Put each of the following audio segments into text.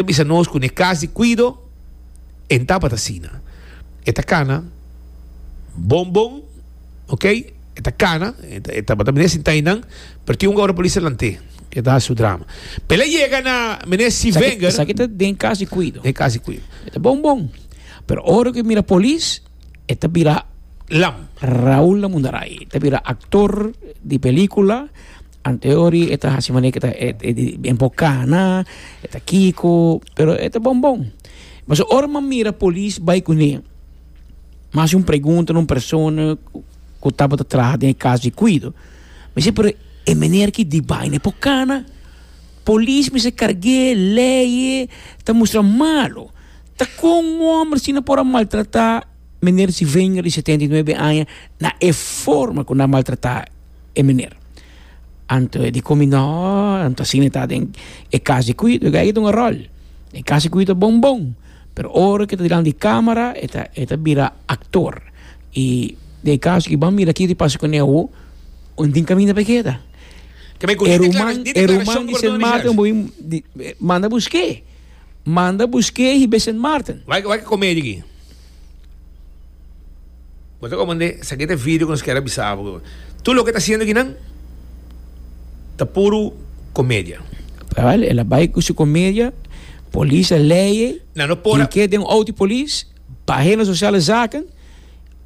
Ta bisa nos cu n'e cas di cuido e tabata asina. E ta cana bon bon, ok, e ta cana, e tabata mene sinta ahí nan, pero tin un ora polis ta lant'e, e ta haci su drama. Pero el a yega na mene Steve Wenger. Esaki ta den cas di cuido. Den cas di cuido. E ta bon bon, pero ora cu e mira polis, e ta bira. Lam. Raul Lamundaray, e ta bira actor di pelicula. Anteori e ta hasi manera ke ta den por cana e ta kiko pero e ta bon bon pasobra ora mi a mira polis bai kune mi a hasi un pregunta na un persona ku tabata traha den e kas di kuido mi si pero e mener ki di bai ne por cana polis mester karge leye ta mustra malo ta kon un homber asina por a maltrata meneer Sylvagner di setenta i nuebe aña na e forma ku nan a maltrata. e mener. Anto e di komi no, anto asina e ta den e kas di Quito, e gay ta un ròl. E kas di Quito bon bon, pero ora ku e ta dilanti di kamera e ta e ta bira aktor. I den e kas aki bo a mira kiko di pasa ku Neo, un tin kaminda pa e keda. E ruman e ruman di Sint Maarten bo bin manda busk'é, manda busk'é i be Sint Maarten. Wak wak e komedia aki. Bo ta comprende? Esaki ta e video cu nos kier a bisa bo. Tur loke ta haciendo akinan ta puro comedia. Cabal, el a bay cu su comedia, polis a leye, tin ke den un auto di polis, bahe na sociale zaken,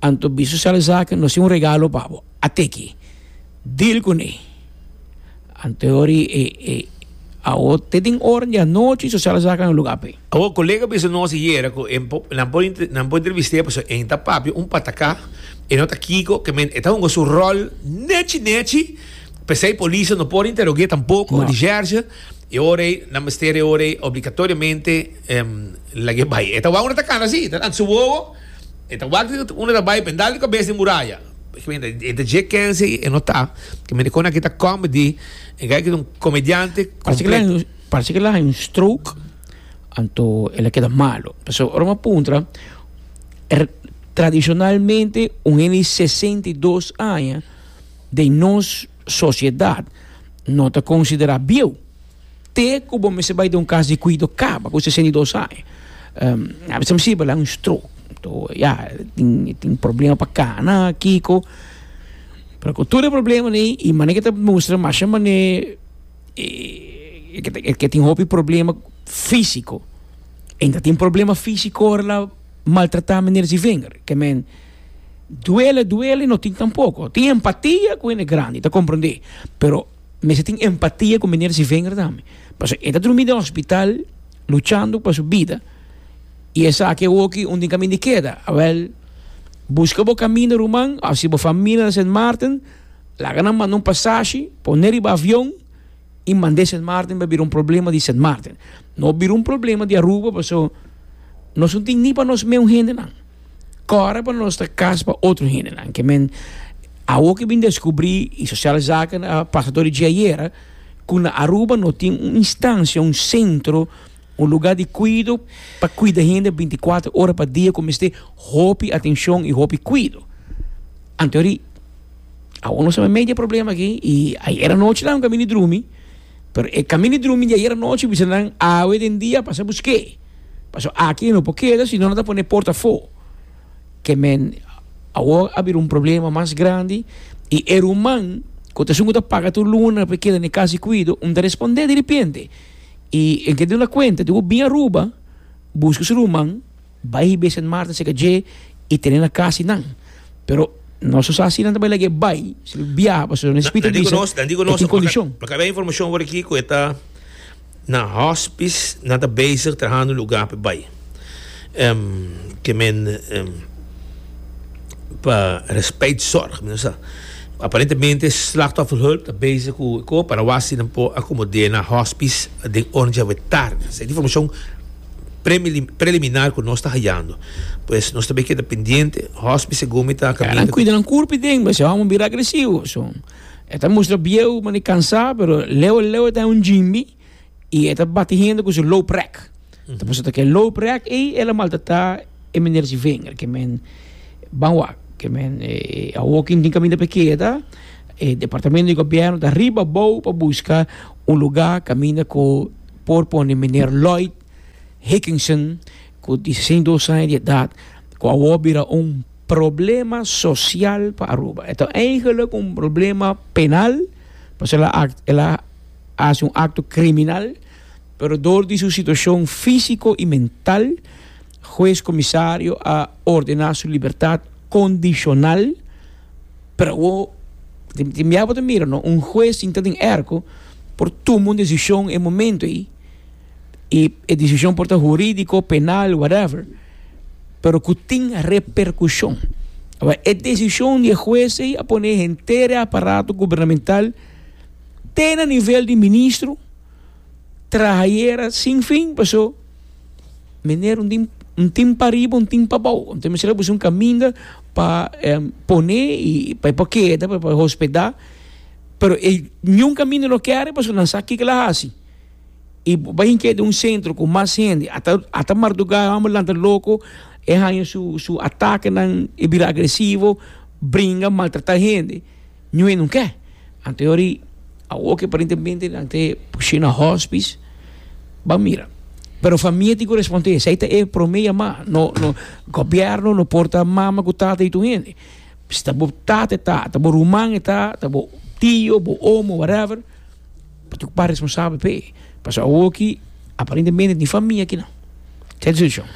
anto bisa sociale zaken, nos tin un regalo pa bo, a teki, deal cune. Anto e ora e, e, e, awo te den ora di anochi sociale zaken a luga ape. Awor, colega bisa nos e yera cu e por, nan por, nan por entrevist'é pasobra e ta papia un patacá, e no ta Kiko, que men e ta hunga su rol nechi nechi, p'esei policia no por interog'é tampoco, di Gerge, e ora ei nan mester e ora ei obligatoriamente lag'é bai. E ta wak unda ta cana así, e ta lanta su wowo, e ta wak di unda ta bai pa e dal di cabes den muraya. Porque men e ta dje kense ei, e no ta, porque men e con aki ta comedy, e gei aki ta un comediante completo. Parse ke la hay un stroke anto el a keda malo pasobra ora mi a puntra tradishonalmente un hende di sesenta i dos aña den nos sosiedat no ta konsiderá bieu te ku bo mester bai den un kas di kuido kaba ku sesenta i dos aña a bisabi si bo la un stroke anto ya e tin problema pa kana a kiko pero ku tur e probleman ei i mane ke ta mustra masha mane. e ke e ke tin hopi problema físiko. En ta tin problema físiko ora la maltratá meneer Zivinger. Ke men duele, duele, no tin tampoko. Tin empatia ku hende grandi, ta komprendé. Pero mester tin empatia ku meneer Zivinger tambe. Paso e ta drumí den hospital luchando pa su bida i esaki awoki un tin kaminda e keda. Awèl, buska bo kaminda ruman, a si bo famia na Sint Maarten Laga nan manda un pasashi, pon'é riba avion i mand'é Sint Maarten pa bira un problema di Sint Maarten. No bira un problema di Aruba paso nos no tin ni pa nos meun hendenan. Kòrda pa nos ta kas pa otro hendenan. Ke men awor ke bin deskubrí i Sosial Zaken a pasa tur di dje ayera ku na Aruba no tin un instancia, un sentro, Un lugá di kuido pa kuida hende binticuatro ora pa dia ku mester hopi atenshon i hopi kuido. Antehorí awor nos a mei di e problema aki i ayer anochi nan a kaminda drumi, pero e kaminda drumi di ayer anochi bisa nan awe den dia a pasa busk'é, paso aki e no por keda sino nan ta pone e port afó. Ke men awor a bira un problema mas grandi i e ruman ku ta esun ku ta paga tur luna pa e keda na e kas di kuido no ta respond'é di repente. Y el ke duna cuenta di bo bin Aruba, busca su ruman, bay hib'é Sint Maarten cerca dje y tene na casa di nan. Pero nos no sa si nan ta bay lagu'é bay, si lo biaha pasobra nan Espíritu ta bisa cu e tin condicion. Maka habia informacion awor aki cu e ta na hospice, nan ta bezig trahando un lugar p'e bay. em ke men em pa respect zorg mi no sa aparentemente slachtofferhulp ta bezig ku e ko para wak si nan por akomod'é na hospice den oren djawe tarde esei ta informashon premili preliminar ku nos ta hayando pues nos ta be keda pendiente hospice segun mi ta ya nan kuida nan kurpi den bo esei homo bira agresivo so e ta mustra bieu mane kansa pero leu leu e ta un djimbi. y e ta bati hende cu su loop rek. Ta puso ta ke loop rek ei, el a maltrata e meneer si vinger, ke men ban wak, ke men eh, a walking tin kaminda pe keda, e departamento di gobierno ta riba bou pa busca un luga kaminda cu por pone meneer Lloyd Hickinson cu di sesenta i dos aña di edad cu awor a bira un problema social pa Aruba. E ta eigenlijk un problema penal pasobra el a, el a. hasi un akto kriminal, pero dor di su situashon físiko i mental, hues komisario a ordená su libertat kondishonal. Pero awo, tin bia bo ta mira, no? Un hues sinta den èrko por tuma un desishon e momentu ei, i e desishon por ta hurídiko, penal, whatever, pero ku tin reperkushon. Awa, e desishon di e hues ei a pone henter e aparato gubernamental. te na nivel di ministro traha yera sin fin paso miner un tin un tin pariba un tin pabou ento mester a buska un caminda pa pone y pa e por keda pa e por hospeda pero e niun caminda no kere paso nan sa kiko lo a haci y bo bai hinke den un centro cu mas hende ata ata marduga e homber lanta loco e haña su su atakenan e bira agresivo bringa maltrata hende. Ñu'e nun ke. Anto yori awor ke aparentemente nan te push'é na hospis, ban mira. Pero famia tin ku respond'é, esei ta e promé yamá. No, no, gobièrnu no por ta mama ku tata di tur hende. Si ta bo tata e ta, ta bo ruman e ta, ta bo tio, bo omo, whatever. P'e ocupá responsabel p'e, pasobra awor aki aparentemente ni famia kinan ta e decision.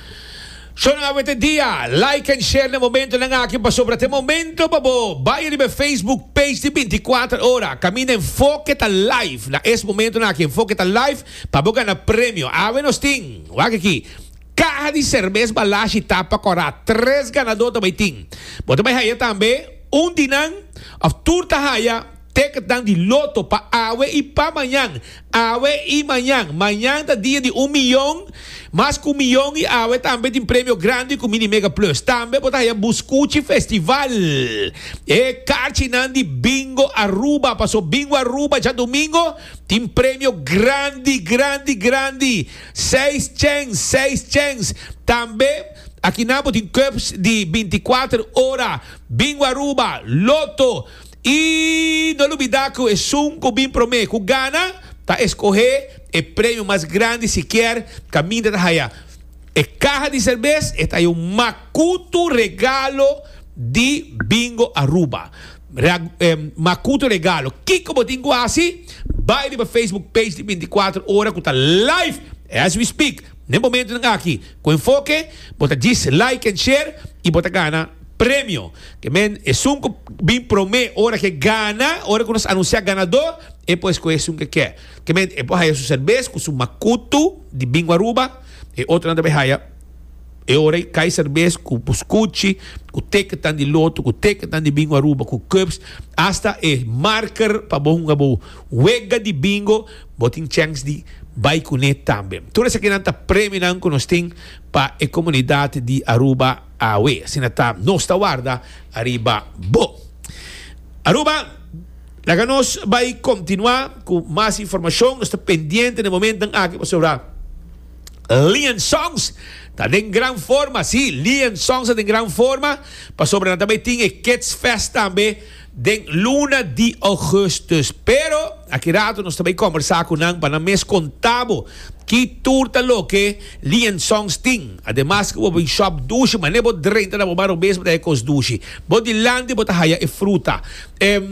So nan a wete dia, like en share na e momentonan aki pasobra ta e momento pa bo bay riba e Facebook page di Binti Kuater Ora, kaminda Enfoke ta live na es momentonan aki Enfoke ta live pa bo gana premio. Awe nos tin, wak aki, caha di cervez Balashi tapa corá, tres ganador ta bay tin. Bo ta bay haya tambe un di nan of tur ta haya. Tekentnan di loto pa awe i pa mañan. Awe i mañan. Mañan ta dia di un miyon. Mas ku un miyon i awe tambe tin premio grandi ku Mini Mega Plus. Tambe bo ta haya Buskuchi Festival, e karchinan di Bingo Aruba. Paso Bingo Aruba djadumingo tin premio grandi, grandi, grandi. Seis chens, seis chens. Tambe akinan bo tin cups di binti kuater ora. Bingo Aruba, loto. I no lubidá ku esun ku bin promé ku gana ta eskohé e premio mas grandi sikier kaminda ta haya e kaha di serbes e ta haya un makutu regalo di Bingo Aruba makutu regalo kiko bo tin ku hasi bai riba Facebook page di binti kuater ora ku ta live as we speak. Den momentunan aki ku enfoke bo ta djis like en share i bo ta gana premio. Ke men esun ku bin prome ora ke gana, ora ku nos anunsiá ganadó e por eskohe esun ke kè. Ke men e por haya su serbes ku su makutu di bingo Aruba, e otronan ta bay haya e ora ei kai serbes ku buskuchi, ku teketan di loto, ku teketan di bingo Aruba, ku cups, asta e marker pa bo hunga bo wega di bingo. Bo tin chèns di bai kuné tambe. Tur esakinan ta premionan ku nos tin pa e komunidat di Aruba awe. Asina ta nos ta warda ariba bo. Aruba, laga nos bai kontinuá ku mas informashon. Nos ta pendiente na e momentonan aki pasobra Lion Songs ta den gran forma. Sí, Lion Songs ta den gran forma pasobra nan ta bai tin e Kids Fest tambe. den luna di Augustus. Pero aki rato nos ta bay combersa cu nan pa nan mes conta bo ki tur ta loke Lee and Sons tin. Ademas cu bo bo un shop dushi, mane bo drenta na bo bar robes bo ta haya cos dushi. Bo dilanti bo ta haya e fruta. Em,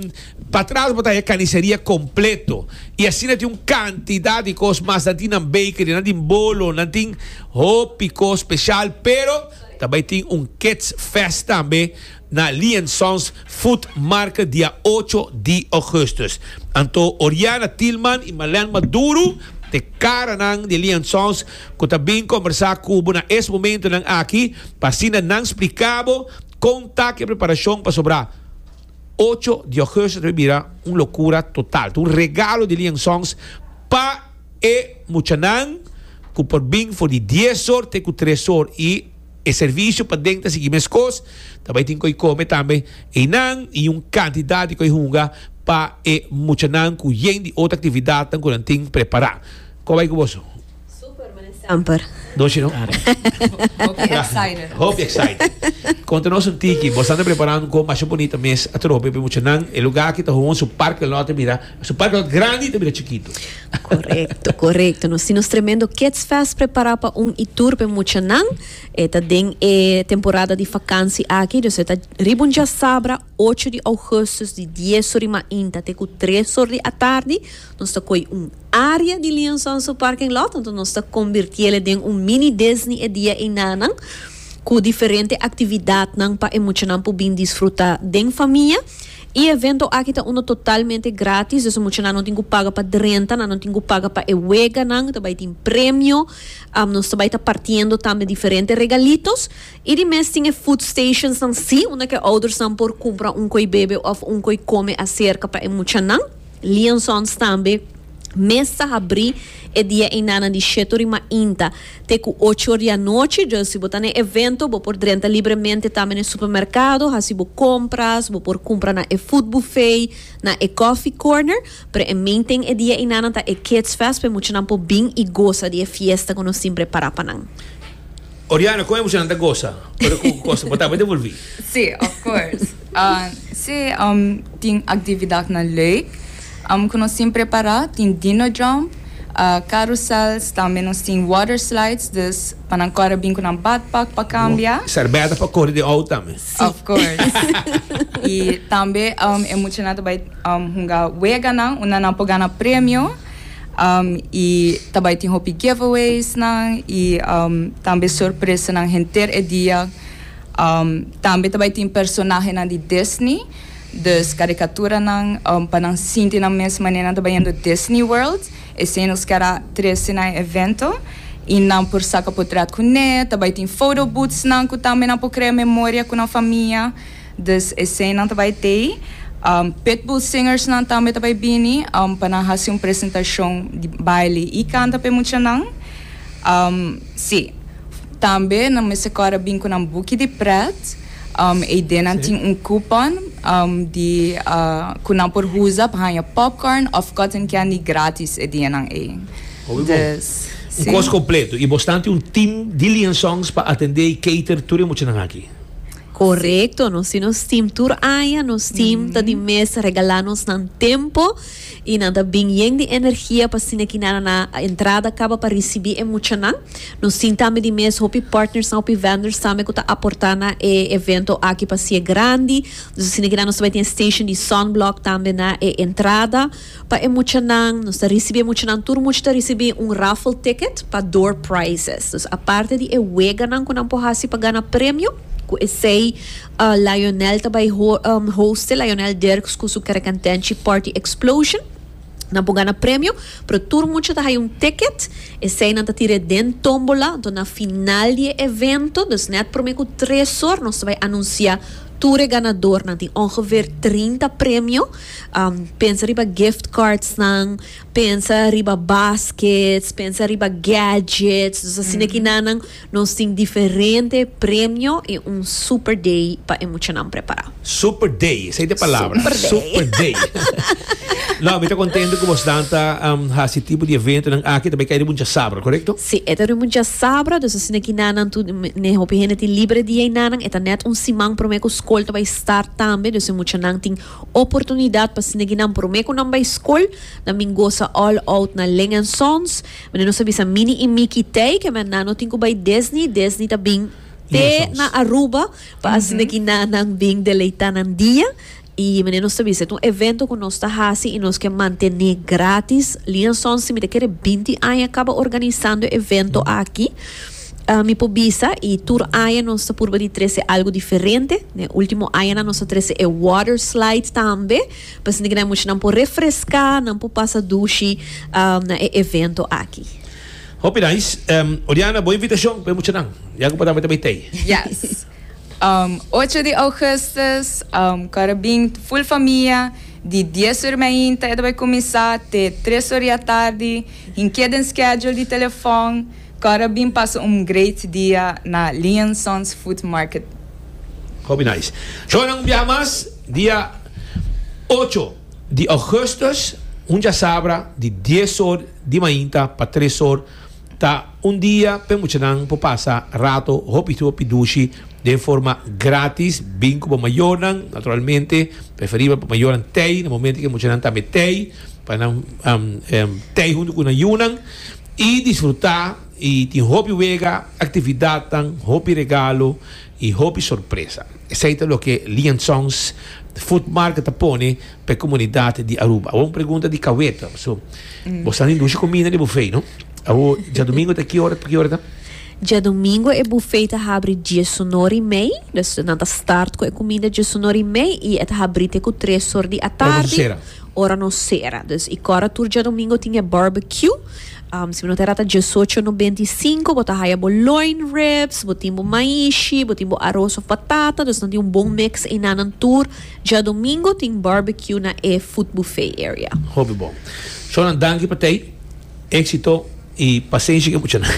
patras bo ta haya caniceria completo. Y asina tin un cantidad di cos mas. Nan tin nan bakery, nan tin bolo, nan tin hopi cos special. Pero ta bay tin un kids fest tambe na Lian Sons Food Market di a ocho di Augustus. Anto Oriana Tilman i Marlène Maduro, e karanan di Lian Sons ku ta bin kombersá ku bo na es momentonan aki pa asina nan spliká bo kon ta ku e preparashon pasobra ocho di Augustus ta bin bira un lokura total. Ta un regalo di Lian Sons pa e muchanan ku por bin for di dies or te ku tres or i E servicio paden ta sigui meskos, ta bay tin cu ey come tambe eynan y un cantidad di cu ey hunga pa e muchanan cu yen di otro actividadnan cu nan tin prepara. Cu a bay cu boso? Super, mane semper. Nochi no? Hopi excited. Hopi excited. Conta nos un tiki, boso a ta prepara un con masha bunita mes atrobe pa e muchanan. E lugar aki ta hoon su Park del Norte mira. Su parkot grandi ta bira chikitu. Korekto, korekto. Nos tin nos tremendo Kids Fest prepará pa un i tur pa e muchanan. E ta den e temporada di fakansi aki, dus e ta riba un djasabra, ocho di ougùstus, di dies or di mainta te ku tres or di atardi. Nos ta koi un área di Liansons su parking lot, anto nos ta kombirtié le den un mini Disney e dia einanan, ku diferente aktividatnan pa e muchanan por bin disfrutá den famia. E evento aki ta uno totalmente gratis, dus mucha nan no tin cu paga pa drenta, nan no tin cu paga pa e weganan, ta bay tin premio, nos ta bay ta partiendo tambe diferente regalitos, y di mes tin e food stationsnan si, unda cu e oudersnan por cumpra un coi bebe of un coi come acerca pa e muchanan. Leon Sons tambe mes ta habrí e dia einanan di shetu rima inta te ku ocho di anochi. Djos si bo ta na e evento bo por drenta libremente tambe na e supermerkado, hasi bo kompras, bo por kumpra na e food buffet, na e coffee corner. Pero e main ting e dia einanan ta e Kids Fest pa e muchanan por bin i gosa di e fiesta ku nos tin prepará pa nan. Oriana, con emocionnan ta goza ora cu cos bo ta bay devolvi? Sí, of course. Sí, tin actividadnan leuk cu nos tin prepara, tin dino jump, carousels, tambe nos tin water slides, dus pa nan core bin cu nan badpak pa cambia. Serbeta pa cori den out tambe. Of course. Y tambe e muchanan ta bay hunga weganan unda nan por gana premio. Um, y ta bai tin hopi giveaways nan y um, tambe sorpresa nan henter e dia. Um, tambe ta bai tin personaje nan di Disney, dus caricatura nan um, pa nan sinti nan mes manera nan ta bai yendo Disney World. Esei nos kara trece na e evento y nan por saca potret cu ne, ta bai tin photo booths nan cu tambe nan por crea memoria cu nan famia. Dus eseinan ta bai tei. Pitbull Singersnan tambe ta bai bini pa nan hasi un presentashon di baile i kanta pa e muchanan. Sí, tambe nan mester kòrda bin ku nan buki di prèt. Eidenan tin un kupòn di ku nan por usa pa haña popcorn òf cotton candy grátis e dianan ei. Hopi bon. Dus, sí. Un kos kompletu. I bo stanti un tim di Liansongs pa atendé i cater tur e muchanan aki. Correcto, nos tin nos team tur aña, nos team mm -hmm. ta di mes regala nos nan tempo y nan ta bin yen di energia pa sina ki nana na entrada caba pa recibi e mucha nan. Nos tin tambe di mes hopi partners na hopi vendors tambe ku ta aporta na e evento aki pa si e grandi. Dus sina ki nana nos ta bai tin e station di sunblock tambe na e entrada. Pa e muchanan, nos ta ricibi e muchanan, tur mucha ta ricibi un raffle ticket pa door prizes. Dus aparte di e weganan cu nan por haci pa gana premio, cu esey Lionel ta bay hoste, Lionel Dirks cu su Kerekentenchi Party Explosion, nan por gana premio, pero tur mucha ta haya un ticket, esey nan ta tira e den tombola, enton na final di e evento, dus net prome cu tres or, nos ta bay anuncia tur e ganadornan, tin ongeveer trinta premio. Pensa riba gift cardsnan, pensa riba baskets, pensa riba gadgets. Dus asina e kinanan nos tin diferente premio i un super day pa e muchanan prepará. Super day, esei ta e palabra. Super day. Super day. No, mi ta kontento ku bosnan ta hasi e tipo di eventonan aki, ta bai kai riba un djasabra, korekto? Sí, e ta riba un djasabra, dus asina e kinanan tur, ne hopi hende tin libre dia ei nanan, e ta nèt un siman promé ku skol ta bai start tambe, dus e muchanan tin. Oportunidad pa snegi nan prome cu nan bay scol. Nan bin gosa all out na Ling and Sons. Mende nos a bisa Mini y Mickey Tey que men nan no tin cu bay Disney. Disney ta bin te na Aruba pa a snegi na nan bin deleita nan dia. Y mende nos ta bisa et un evento cu nos ta haci y nos ke mantene gratis. Ling and Sons tin mita kere binti aña caba organisando e evento aki. Mi por bisa y tur aña nos ta purba di trece algo diferente. N'e ultimo añanan nos a trece e water slide tambe, pasobra que nan muchanan por refresca, nan por pasa dushi na e evento aki. Hopi nice. Oriana, bo invitacion pa e muchanan. Ya cu bo tambe ta bay tey. Yes. Ocho di augustus, Cora bin full famia, di dies ur mainta e ta bay cuminsa te tres ur di atardi, hinke den schedule di telefon. Cora bin pasa un great dia na Lee and Sons Food Market. Hopi nice. Shownan un biaha mas dia ocho di augustus hunjasabra di dies or di mainta pa tres or ta un dia p'e muchanan por pasa rato hopi hopi dushi den forma gratis bin cu bo mayornan naturalmente preferibel pa mayornan tey na momento cu e muchanan ta met tey pa nan tey hunto cu nan yunan. I disfrutá i tin hopi wega, aktividatnan, hopi regalo i hopi sorpresa. Esei ta loke Lee and Sons Food Market ta pone pa e komunidat di Aruba. Awor un pregunta di kaweta. So, bo sa nin dushi kominda na e bufei, no? Awor, djadumingu ta ki ora pa ki ora ta? Djadumingu e bufei ta habri dies sunor i mei. Nan ta start ku e kominda dies sunor i mei i e ta habri te ku tres sor di atardi. Ora nos sera. Dus i kora tur djadomingo tin e barbecue. Si bo no ta rata diesocho no benti i sinku bo ta haya bo loin ribs, bo tin bo maishi, bo tin bo aros of batata, dus nan tin un bon mix einan nan tur djadomingo tin barbecue na e food buffet area. Hopi bon. Shona danki pa tei, exito i pasenshi ke mucha nan.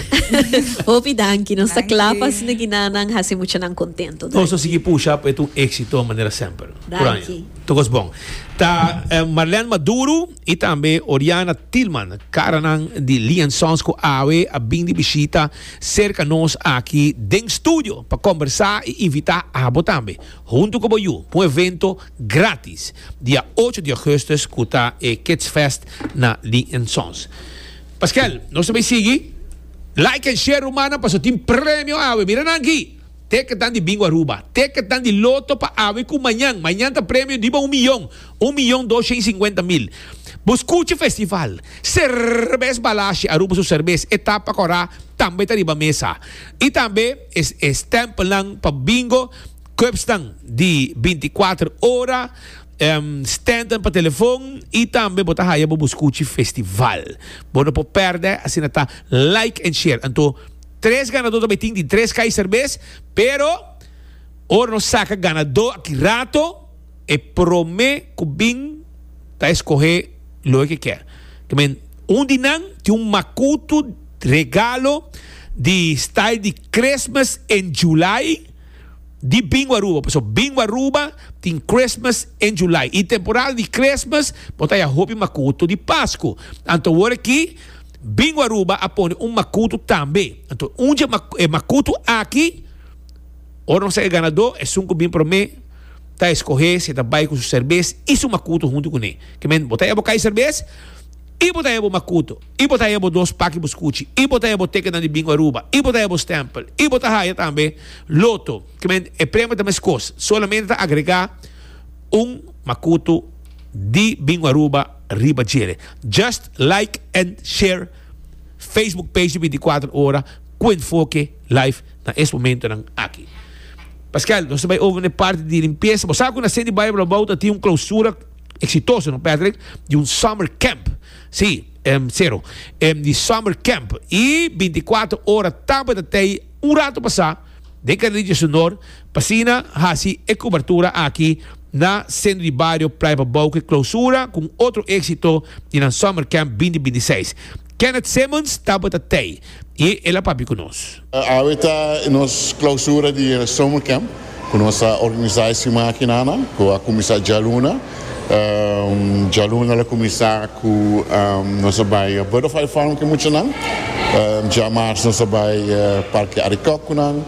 Hopi danki, nos ta kla pa asina ki nan nan hasi mucha nan kontento. Nos ta sigui pusha pa e ta un exito manera semper. Puraña. Tokos bon ta Marlène Maduro i tambe Oriana Tilman, karanan di Lian Sons ku awe a bin di bishita serka nos aki den studio pa kombersá i invitá abo tambe huntu ku bo yu pa un evento grátis dia ocho di Augustus ku ta e Kids Fest na Lian Sons. Paskèl, nos ta bai sigui. Like en share rumannan pasobra tin premio awe. Mira nan aki! Teketan di Bingo Aruba, teketan di loto pa awe ku mañan. Mañan ta premio riba un miyon, un miyon dos shen sinkuenta mil. Bo skucha festival, Serbes Balasje, Aruba su serbes, e tapa kòrá tambe ta riba mesa. I tambe e stèmpelnan pa bingo, kòpsnan di binti kuater ora, stènten pa telefon i tambe bo ta haya bo buskuchi festival. Bo no por pèrdè, asina ta like and share anto. Tres ganadó ta bai tin di tres kai serbes, pero ora nos saca ganadó aki rato, e prome cu bin ta escohe loe ke kier. Ta men un di nan tin un makutu regalo di style di Christmas in July di Bingo Aruba. Paso Bingo Aruba tin Christmas in July. I temporada di Christmas bo ta haya hopi makutu di Pascu. Anto awor aki. Bingo Aruba a pone un makutu tambe. Anto un dje e makutu aki ora nos a e ganadó esun ku bin promé ta eskohé si e ta bai ku su serbes i su makutu huntu kuné. Ke men bo ta heba kai serbes i bo ta heba bo makutu i bo ta heba bo dos paki bo skuchi i bo ta heba bo tekennan di Bingo Aruba i bo ta heba bo stèmpel i bo ta haya tambe loto. Ke men e premio ta meskos solamente ta agregá un makutu di Bingo Aruba. riba djere. Just like and share Facebook page di binticuater ora cu enfoke live na es momentonan aki. Pascual, nos ta bay over n'e parti di limpieza. Bo sa cu na City Bible Abou ta tin un clausura exitoso, no Patrick? Di un summer camp. Si, em, Cero. Em, di summer camp. Y binticuater ora tabata t'ey un rato pasa. den Carrillo su nor, pa asina haci e cubertura aki na Centro di Bario Playa pa Bouke Clausura cu un otro exito di nan Summer Camp bindi bindi seis. Kenneth Simmons tabata tey y el a papia cu nos. Awe ta nos clausura di e Summer Camp cu nos a organiza e siman aki na nan cu a cuminsa djaluna. Djaluna lo kuminsá ku nos a bai a Butterfly Farm ku muchanan. Djá Mars nos a bai Parke Arikòk ku nan.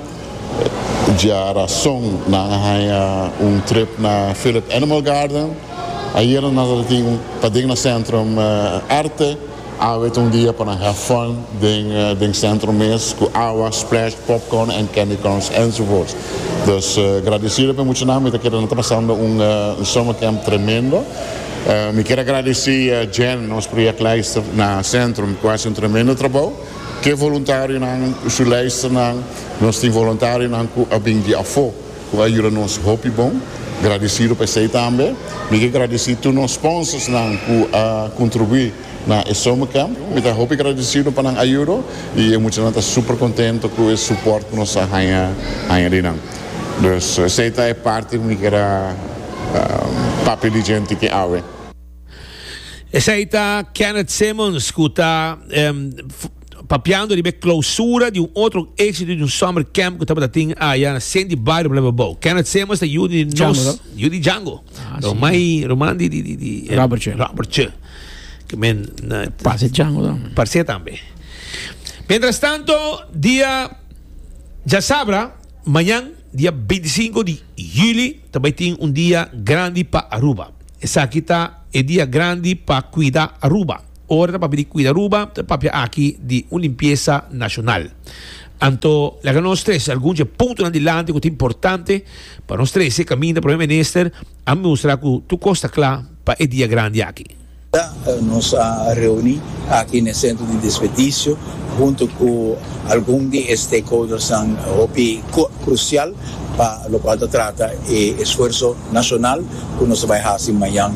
Djá Rason nan a haña un trip na Phillip Animal Garden. Ayera nan a tin paden na Sentrum Arte. Awe ta un dia pa nan have fun den centro mes cu awa, splash, popcorn and candy corns enzovoorts. Dus gradecido pa e muchanan mi ta kere nan ta pasando un summer camp tremendo. Mi kier a gradeci Jen, nos projectleister na centrum cu a haci un tremendo trabou. Ke voluntarionan cu su leisternan, nos tin voluntarionan cu a bin di afo Cu a yuda nos hopi bon. Gradecido pa esey tambe. Mi ke gradeci tur nos sponsorsnan cu a contribui na e summer camp. Mi ta hopi gradecido pa nan ayudo y e muchanan ta super contento cu e support cu nos a haya haya di nan. Dus esey ta e parti cu mi kier a papia di djente ke awe. Esey ta Kenneth Simmons cu ta. Papiando riba e clausura di un otro exito di un summer camp cu tabata tin aya na cen di bario Blauwe Bouw. Kenneth Semmers ta yu di nos, yu di Django. Romai, roman di, di, di, di Robertje. Robertje. Que men na Pase Django dan. Parse tambe. Mientras tanto, dia ja sabra, mañan, dia 25 di juli, ta bai tin un dia grandi pa Aruba. Esaki ta e dia grandi pa cuida Aruba. Ora ta papia di cuida Aruba, ta papia aki di un limpiesa nacional. Anto, laga nos trece algun dje puntonan dilanti cu ta importante pa nos trece caminda Prome Minister a mustra cu tur cos ta cla pa e dia grandi aki. Ta nos a reuni aki n'e centro di desperdicio hunto cu algun di e stakeholdersnan hopi crucial pa locual ta trata e esfuerso nacional Cu nos a bay haci mañan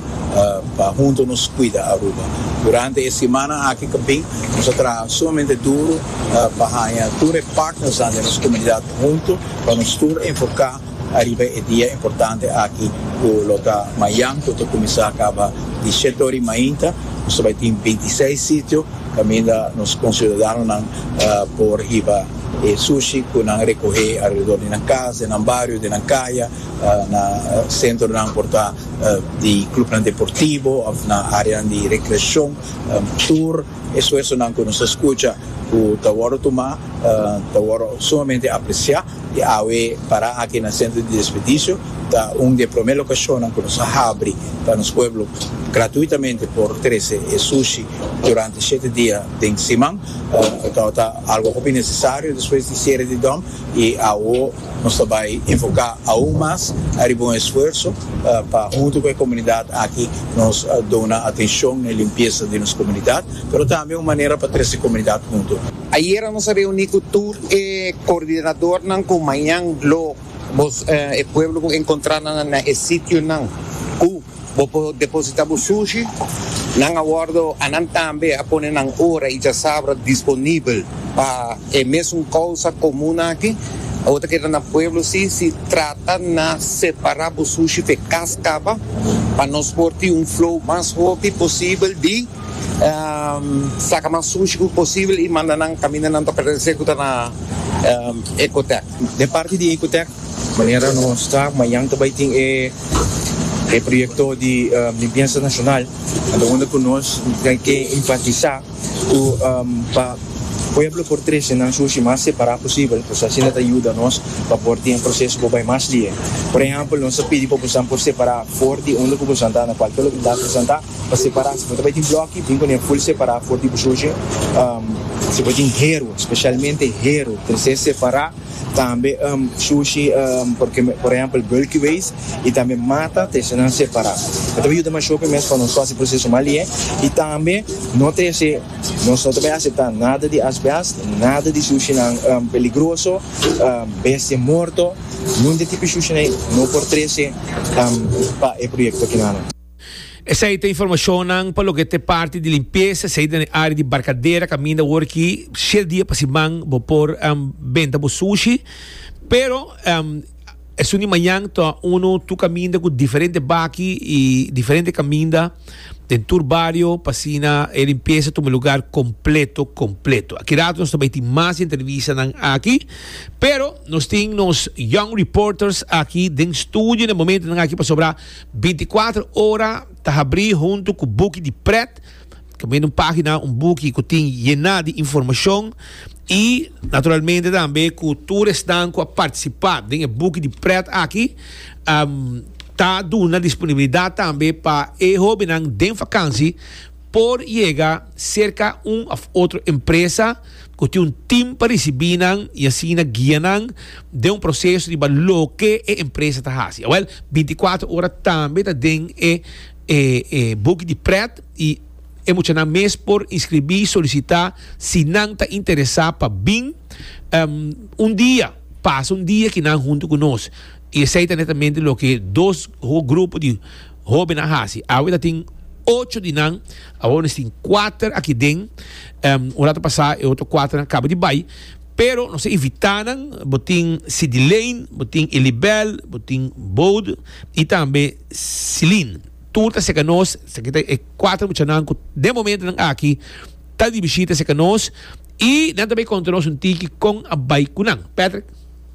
pa hunto nos cuida Aruba? Durante e simana aki ca bin nos a traha sumamente duro pa haña tur e partnersnan den nos comunidad hunto pa nos tur enfoca ariba e dia importante aki cu lo ta mañan cu ta cuminsa caba di shete ora y mainta. Nos a bay tin binti seis sitio caminda nos conciudadanonan por hiba e sushi cu nan recoge alredor di nan cas, den nan bario, den nan caya. Na sentronan por ta di clubnan deportivo of na areanan di recreacion. Tur esfuersonan cu nos a scucha cu ta worde tuma ta worde sumamente aprecia y awe para aki na Centro di Desperdicios ta un di e prome locacionnan cu nos a habri pa nos pueblo gratuitamente por trece e sushi durante shete dia den siman. Cu ta algo hopi necesario despues di cierre di dom. I awo nos ta bai enfoká aún mas ariba un esfuerso pa huntu ku e komunidat aki nos duna atenshon n'e limpiesa di nos komunidat, pero tambe un manera pa trese komunidat huntu. Ayera nos a reuní ku tur e koordinadornan ku mañan lo e pueblo ku enkontrá nan na e sitionan ku. Bo por deposita bo sushi. Nan a wordo a nan tambe a pone nan ora y chasabra disponibel pa e mesun causa comun aki. Bo ta keda na pueblo si, si trata na separa bo sushi fe cas caba pa nos por tin un flow mas hopi posibel di saca mas sushi cu posibel y manda nan caminda nan toca rese cu ta na Ecotec. Den parti di Ecotec Manera nos ta, mañan ta bai tin e proyecto di limpiensa nacional, anto unda cu nos ta ke enfatisa cu pa pueblo por trece nan sushi mas separa posibel, pues asina ta yuda nos pa por tin e proceso por bai mas lihe. Por ehempel, nos ta pidi pa bosan por separa for di unda cu bosan ta, na cualke localidad cu bosan ta, pa separa. Si bo ta bai tin bloki, bin cu ne full separa for di bo sushi. Si bo tin hero, specialmente hero, trece separa. Tambe shushi porque por ehempel bulky waste y tambe mata ta esnan separa e ta por yuda masho mes pa nos hasi proceso mas lie y tambe no ta hasi nos no ta por acepta nada di asbest nada di shushi nan peligroso bestia morto nunde tipo shushi nan no por trece pa e proyecto kinan. Esei ta informashonnan pa loke ta e parti di limpiesa, esei den e área di barkadera kaminda awor aki shete dia pa siman bo por benta bo sushi. Pero esun di mañan ta unu tur kaminda ku diferente baki i diferente kaminda den tur bario pa asina e limpiesa tuma lugar kompleto kompleto. Aki rato nos ta bai tin mas di entrevistanan aki, pero nos tin nos young reporters aki den studio na e momentonan aki pasobra. Binticuatro Ora ta habrí huntu ku buki di prèt, tambe un página, un buki ku tin yená di informashon i naturalmente tambe ku tur esnan ku a partisipá den e buki di prèt aki ta duna disponibilidat tambe pa e hóbennan den vakansi por yega serka un òf otro empresa. ku tin un tim pa risibí nan i asina guia nan den un proseso riba loke e empresa ta hasi. Awèl, binti kuater ora tambe ta den e e buki di prèt i e muchanan mes por inskribí, solisitá, si nan ta interesá pa bin un dia pasa un dia ki nan huntu ku nos. I esei ta netamente loke dos grupo di hóben a hasi. Awe ta tin ocho di nan, awor nos tin kuater aki den. Un ratu pasá e otro kuaternan kaba di bai, pero nos a invitá nan. Bo tin Sidilein, bo tin Elibel, bo tin Bode i tambe Silin. Tur ta serka nos, esaki ta e kuater muchanan ku den momento nan aki ta di bishita serka nos i nan ta bai konta nos un tiki kon a bai ku nan. Patrick.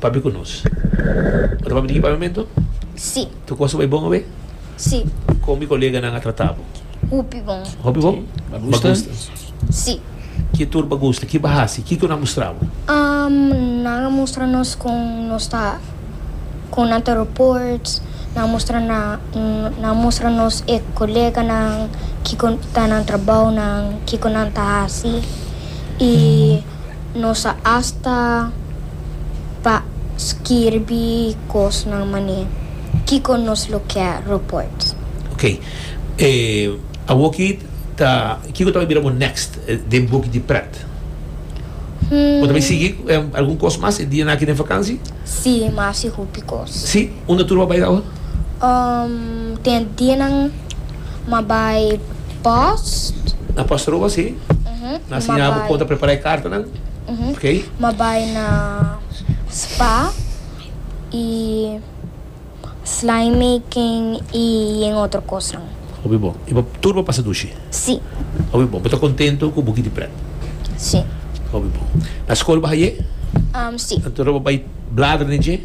Pabi ku nos? Bo ta papia di ki pabiamentu? Si. Tu kos ta bai bon awe? Si. Kon mi koleganan a trata bo? Hopi bon. Hopi bon? Ba gusta? Si. Ki tur ba gusta? Ki ba hasi? Kiko nan a mustra bo? Um, nan a mustra nos kon nos ta kon nan ta report, nan a mustra na nan a mustra nos e koleganan kiko ta nan trabounan, kiko nan ta hasi i. Nos a asta pa skirbi kosnan manera kiko nos lo ke roports. Ok. E awoki ta kiko ta bai bira bo next den boki di pret? Bo ta bai sigui algun kos mas e dianan aki den fakansi? Sí, mas i hopi kos. Sí? Unda tur bo a bai awor? Umm, tin e dianan. Ma bai post. Na post Aruba si. Na siña bo kon ta prepara e kartanan. Okay. Ma bai na spa y slime making y yen otro cosnan. Hopi bon. Y bo tur bo pasa dushi? Si. Hopi bon. Bo ta contento cu bo kiti pret? Si. Hopi bon. Na school bo haye? Si. Anto bo bai bladra den dje?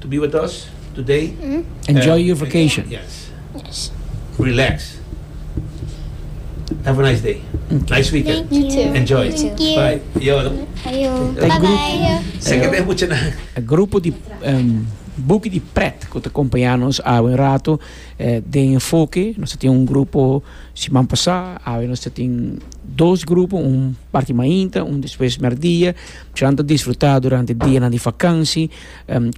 To be with us today. Enjoy your vacation. Yes. Relax. Have a nice day. Nice weekend. Thank you too. Enjoy. Thank you. Bye. Yo no. Ayo. Bye bye. Seke den mucha nan. E grupo di buki di pret ku ta kompañá nos awe un ratu den enfoke nos tin un grupo siman pasá awe nos tin dos grupo un parti mainta un despues merdia. Cian ta disfruta durante dianan di fakansi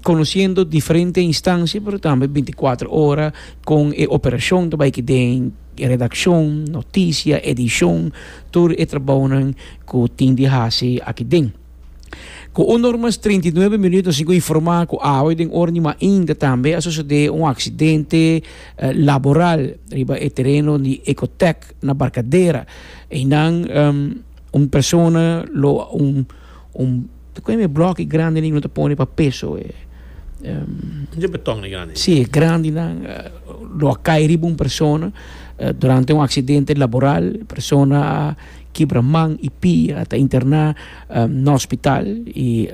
konosiendo diferente instansia, pero tambe binticuatro ora kon e operashon ta bai ki den redakshon, notisia, edishon, tur e trabounan ku tin di hasi aki den. Ku un normas treinta i nuebe minut nos tin ku informá ku awe den ora di mainta tambe a sosodé un aksidente laboral riba e tereno di Ecotec na Barkadera. Einan. Un persona lo un un kiko e bloki grandi nan lo ta pone pa peso e. Dje beton e grandi. Si e grandi nan lo a kai riba un persona durante un aksidente laboral e persona a kibra man i pia a ta interna na hospital i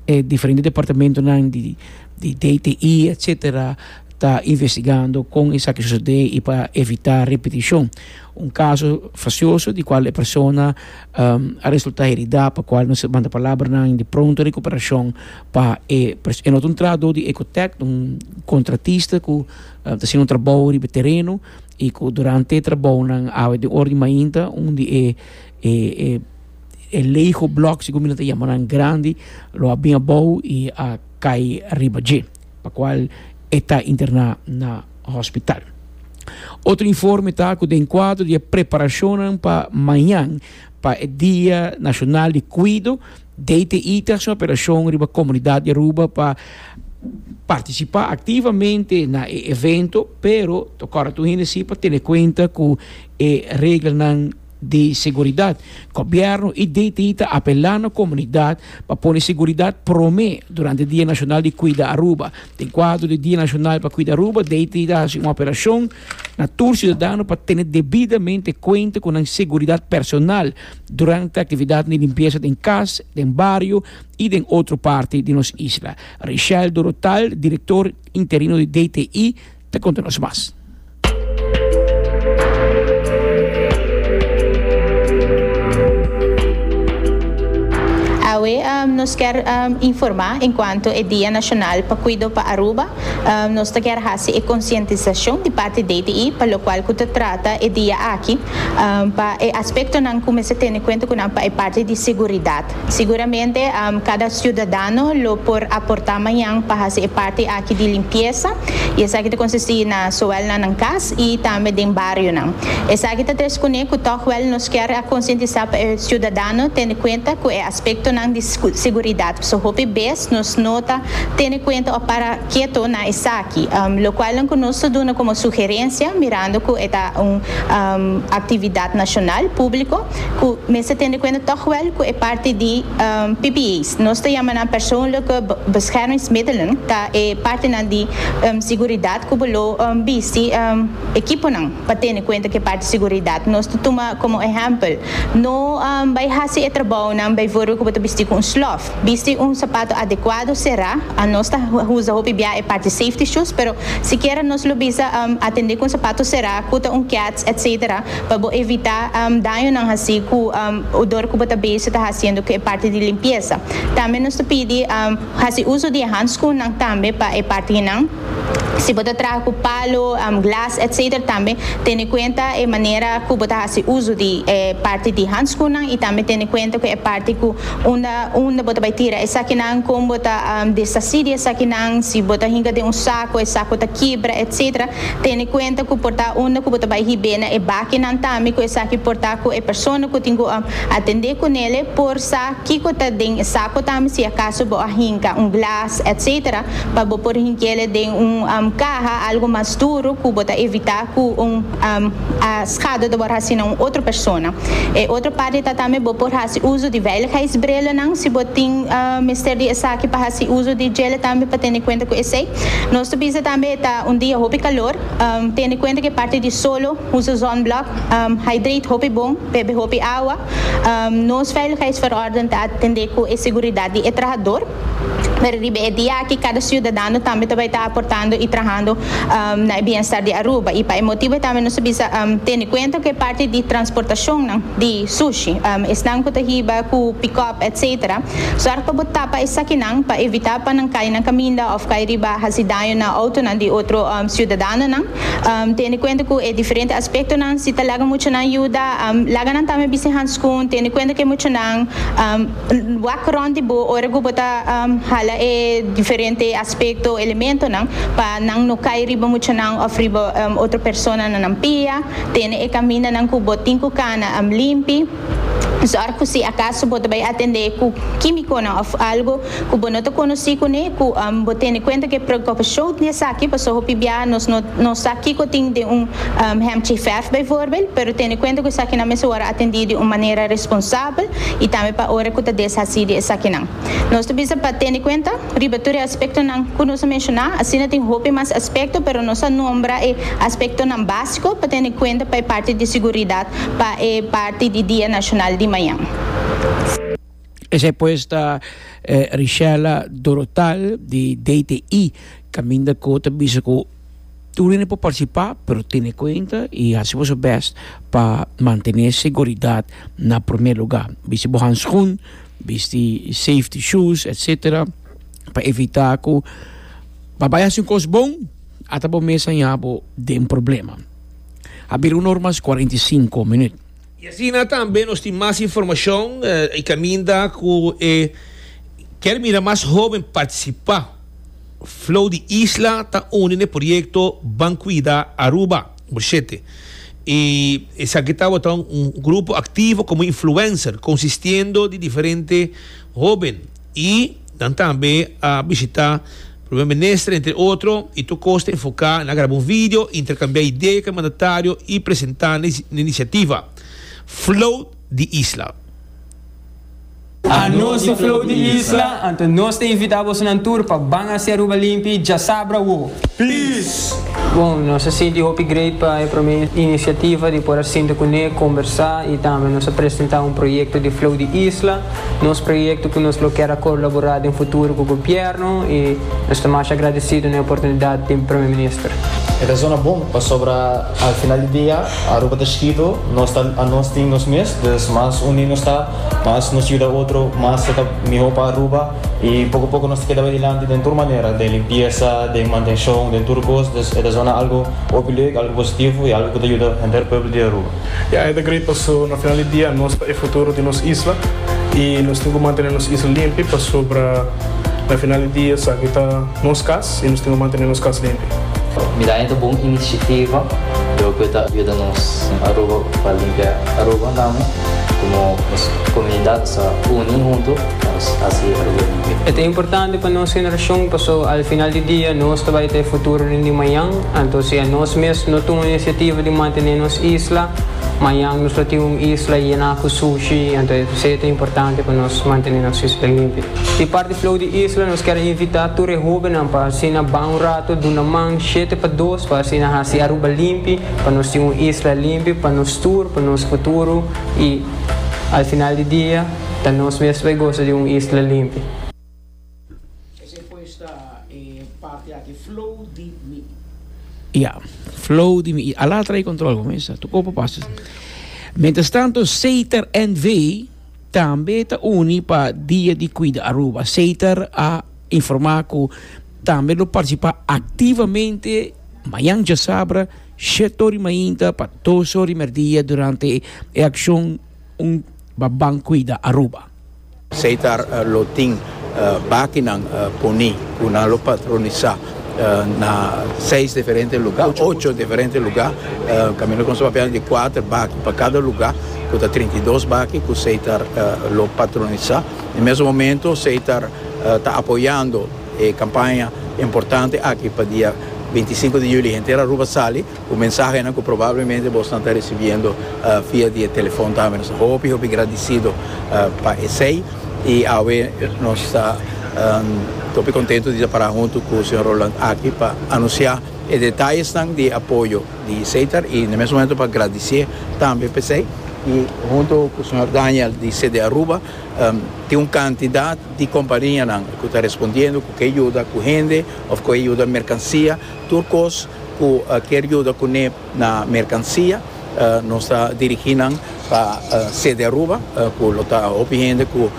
e diferente departamentonan di di DTI etsetera ta investigando kon esaki sosodé i pa evitá repetishon. Un kaso fasioso di kual e persona a resultá heridá pa kual nos a manda palabranan di pronto rekuperashon pa e persona. E no ta un trahadó di Ecotec, ta un kontratista ku ta hasiendo un trabou riba e tereno i ku durante e trabounan awe den ora di mainta un di e e lego blòk, sigur mi lo ta yama nan, grandi lo a bin abou i a kai riba dje. pa cual e ta interna na hospital. Otro informe ta cu den cuadro di e preparacionnan pa mañan pa e Dia Nacional di Cuido, DTI ta haci un apelacion riba comunidad di Aruba pa participa activamente na e evento, pero ta correcto hende si pa tene cuenta cu e reglanan. di Seguridat. Gobièrnu i DTI ta apelá na komunidat pa pone seguridat promé durante Dia Nashonal di Kuida Aruba. Den kuadro di Dia Nashonal pa Kuida Aruba, DTI ta hasi un operashon na tur siudadano pa tene debidamente kuenta ku nan seguridat personal durante aktividatnan di limpiesa den kas, den bario i den otro parti di nos isla. Richelle Dorothal, direktor interino di DTI. Ta konta nos mas. Awe nos kier informa enkuanto e Dia Nashonal pa Kuido pa Aruba. Nos ta kier hasi e konsientisashon di parti DTI pa lokual ku ta trata e dia aki pa e aspektonan ku mester tene kuenta ku nan pa e parti di seguridat. Siguramente kada ciudadano lo por aporta mañan pa haci e parti aki di limpieza y esaki ta consisti na soel na nan cas y tambe den barionan. Esaki ta tres cune cu tochwel nos kier a concientisa pa e ciudadano tene cuenta cu e aspectonan di seguridad pasobra hopi bes nos no ta tene cuenta of para keto na esaki locualnan cu nos ta duna como sugerencia mirando cu e ta un actividad nacional, publico. Cu mester tende cuenta toch wel cu e parti di PPE's, nos ta yama nan persoonlijke beschermingsmiddelen, ta e partinan di seguridad cu bo lo bisti equiponan pa tende cuenta cu e parti seguridad. Nos ta tuma como ehempel, no bay haci e trabounan bijvoorbeeld cu bo ta bisti cu un slof. Bisti un sapato adecuado, cera. Nos ta usa hopi bia e parti safety shoes, pero sikiera nos lo bisa atende cu un sapato cera, cu ta un cats, etcetera. Pa bo evitá dañonan hasí ku odor ku bo ta bezig ta hasiendo ku e parti di limpiesa. Tambe nos ta pidi hasi uso di e handskunnan tambe pa e partinan. Si bo ta traha ku palo, glas etc. Tambe tene kuenta e manera ku bo ta hasi uso di e parti di handskunnan i tambe tene kuenta ku e parti ku unda unda bo ta bai tira esakinan, kon bo ta deshasí di esakinan, si bo ta hinka den un sako e sako ta kibra etc. Tene kuenta ku por ta unda ku bo ta bai hib'é na e bakinan tambe ku esaki por ta ku e persona ku tin ku a atend'é ku nele por sa kiko ta den e sako tambe si akaso bo a hinka un glas etc pa bo por hinkele den un kaha algu mas duru ku bo ta evitá ku un a skada ta wòrdu hasi na un otro persona. E otro parti ta tambe bo por hasi uso di veiligheidsbrillennan si bo tin mester di esaki pa hasi uso di djele tambe pa tene kuenta ku esei. Nos ta bisa tambe e ta un dia hopi calor, tende cuenta cu e parti di solo, usa zonblock, hydrate hopi bon, bebe hopi awa, nos veiligheidsverordening ta atende cu e seguridad di e trahador, pero riba e dia aki cada ciudadano tambe ta bay ta aportando y trahando na e bienestar di Aruba y pa e motibo e tambe nos ta bisa tende cuenta cu e parti di transportacionnan di sushi, esnan cu ta hiba cu pick-up etc. Zòrg pa bo tapa esakinan pa evitá pa nan kai na kaminda òf kai riba hasi daño na outonan di otro siudadanonan. Tende kuenta ku e diferente aspektonan. Si ta laga muchanan yuda, laga nan tambe bisti hanskun. Tende kuenta ku e muchanan wak rònt di bo ora ku bo ta hala e diferente aspekto, elementonan, pa nan no kai riba muchanan òf riba otro persona na nan pia. Tene e kamindanan ku bo tin ku kana limpi. Zòrg ku si akaso bo ta bai atendé ku kímikonan òf algu ku bo no ta konosí kuné ku bo tene kuenta ku e preokupashon di esaki, pasobra hopi biaha nos no sa kiko tin den un hemchiverf bijvoorbeeld, pero tene kuenta ku esakinan mester wòrdu atendí di un manera responsabel i tambe pa ora ku ta deshasí di esakinan. Nos ta bisa pa tene kuenta riba tur e aspektonan ku nos a menshoná. Asina tin hopi mas aspekto, pero nos a nombra e aspektonan básiko pa tene kuenta pa e parti di siguridat. pa e parti di Dia Nashonal di mañan. Esei pues ta Richella Dorotal di DTI caminda cu ta bisa cu tur hende por participa pero tene cuenta y haci boso best pa mantene seguridad na primer lugar. Bisti bo handschoen, bisti safety shoes etc. Pa evita cu pa bay haci un cos bon ata bo mes a yaña bo den problema. a bira un ormas i kuarenta i sinku minüt. I asina tambe nos tin mas informashon i kaminda ku e kier mira mas hóben partisipá. Flow di isla ta uni n'e proyekto Ban Kuida Aruba Number shete i esaki ta botá un grupo aktivo komo influenser konsistiendo di diferente hóben. Y nan tambe a bishita Primer Minister entre otro y tur cos ta enfoca na graba un video, intercambia idea cu e mandatario y presenta nan iniciativa Float di Isla. A nos di Float di Isla, anto nos ta invita bosonan tur pa ban haci Aruba limpi djasabra wo. Peace! Bon, nos a sinti hopi great pa e prome iniciativa di por a sinta cune, conbersa y tambe nos a presenta un proyecto di Float di Isla. Nos proyekto ku nos lo kier a kolaborá den futuro ku gobièrnu i nos ta masha agradesido na e oportunidat di Prome Minister. E razon a bon pasobra al final di dia Aruba ta chikitu, nos ta anos tin nos mes, dus mas uní nos ta, mas nos yuda otro, mas lo ta mihó pa Aruba i poko poko nos ta keda bai dilanti den tur manera, den limpiesa, den mantenshon, den tur kos, dus e ta zona algu hopi lek, algu positivo i algu ku ta yuda henter pueblo di Aruba. E aña ta grei paso na final di dia nos ta e futuro di nos isla y nos tin cu mantene nos isla limpi pasobra na final di dia esaki ta nos cas y nos tin cu mantene nos cas limpi. Mi ta hende bon iniciativa lo cu ta yuda nos en Aruba pa limpia Aruba nami como nos comunidad nos ta uni hunto pa nos haci Aruba limpi. E ta importante pa nos generacion paso al final di dia nos ta bay ta e futuro den di mañan Anto sea nos mes no tuma inisiativa di mantené nos isla. Mañan nos lo tin un isla yená ku sushi, anto esei ta importante pa nos mantené nos isla limpio. Di parti Flow di Isla nos kier a invitá tur e hóbennan pa asina ban un ratu duna man shete pa dos pa asina hasi Aruba limpi, pa nos tin un isla limpi pa nos tur, pa nos futuro i al final di dia ta nos mes ku bai gosa di un isla limpi. Esei pues ta e parti aki, flow di mi. Ya, flow di mi. I ala trae control, como está? Tu copo pasa. Mientras tanto, Seiter NV también está uni para Día de Cuida Aruba. Seiter a informado que también lo participa activamente mañana ya sabra, shetori mainta para dos horas merdía durante e acción un baban cuida Aruba. Seitar lo tin bakinan poni ku nan lo patronisá na seis diferente lugá, ocho diferente lugá, kaminda ku nos ta papia di kuater baki pa kada lugá ku ta trinta i dos baki ku Seitar lo patronisá. E mesun momentu Seitar ta apoyando e kampaña importante aki pa dia binti i sinku di yuli henter Aruba sali. Ku mensahenan ku probablemente bo esnan ta risibiendo via di e telefòn tambe. Nos ta hopi hopi gradisido pa esei. I awe nos ta hopi kontentu di ta para huntu ku señor Roland aki pa anunsiá e detayesnan di e apoyo di Seitar i na mes momento pa gradisié tambe pa esei. I huntu ku señor Daniel di CD Aruba tin un kantidat di kompanianan ku ta respondiendo ku ke yuda ku hende òf ku e yuda merkansia tur kos. Cu kier yuda cu ne na mercancia, nos ta dirigi nan pa sede Aruba, cu lo ta hopi hende cu